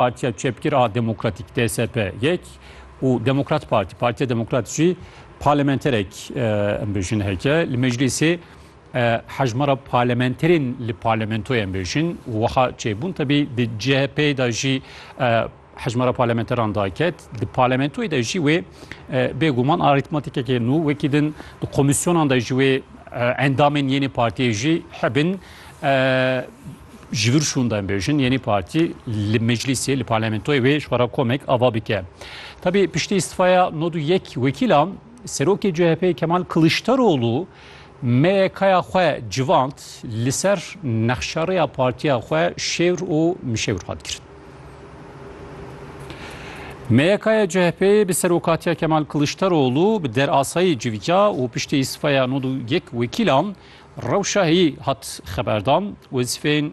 Partiya Çepgir a Demokratîk DSP yek û Demokrat Partî Partiya Demokrat jî parlamenterek em bêjin heke li meclîsê hejmara parlamenterên li parlamentoyê em bêjin û wiha çêbûn tebî di CHP'ê de jî hejmara parlamenteran daket di parlamentoyê de jî wê bêguman arîtmatîkekê nû wekî din di komîsyonan de jî wê endamên yênê partiyê jî hebin Ji vir şûnda em bêjin Yenî Partî li meclîsê li parlamentoyê wê ji xwera komek ava bike. Tabî piştî îstifaya nod û yek wekîlan Serokê CHP'ê Kemal Kiliçdaroglu MYK'ya xwe civand li ser nexşarêya partiya xwe şêwr û mişewr hat kirin. MYK'ya CHP'ê bi serokatiya Kemal Kiliçdaroglu bi derasayî civîya û piştî îstifaya nod û yek wekîlan Rewşahî hat xeberdan, wezîfeyên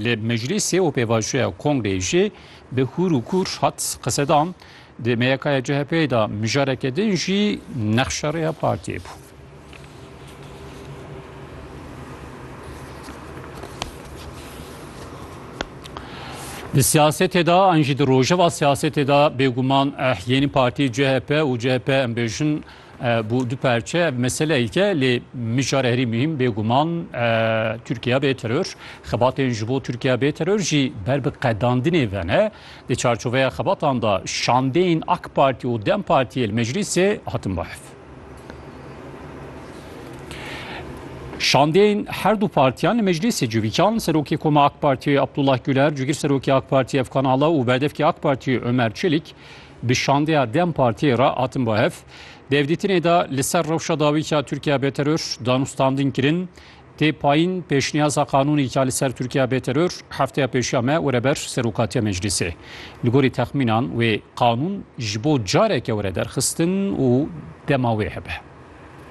li meclîsê û pêvajoya kongreyê jî bi hûr û kûr hat qisedan. Di MYKya CHP'ê de mijareke din jî nexşa rêya partiyê bû. Di siyasetê de an jî di rojeva siyasetê de bêguman yeni partî CHP û CHP em bêjin Bu du parçe meseleyke lê mijar herî muhîm bêguman Tirkiye bê teror. Xebatên ji bo Tirkiye bê teror jî ber bi qedandinê ve ne. Di çarçoveya xebatan de şandeyên AK Partî û Dem Partîyê li meclîsê hatin bahs. Şandeyên her du partiyan li meclîsê civîkan Serokê Koma AK Partîyê Abdullah Güler, cigir Serokê AK Partî Efkan Ala û berdevkê AK Partîyê Ömer Çelik Bi şandeya dem Partiyê re hatin bo hev. Di hevdîtinê de li ser rewşa dawî ka Tirkiya bê teror danûstandin kirin. Tê payîn pêşniyaza qanûnê ka li ser Tirkiya bê teror hefteya pêşiya me were ber Serokatiya Meclîsê. Li gorî texmînan wê qanûn ji bo careke were derxistin û dema wê hebe.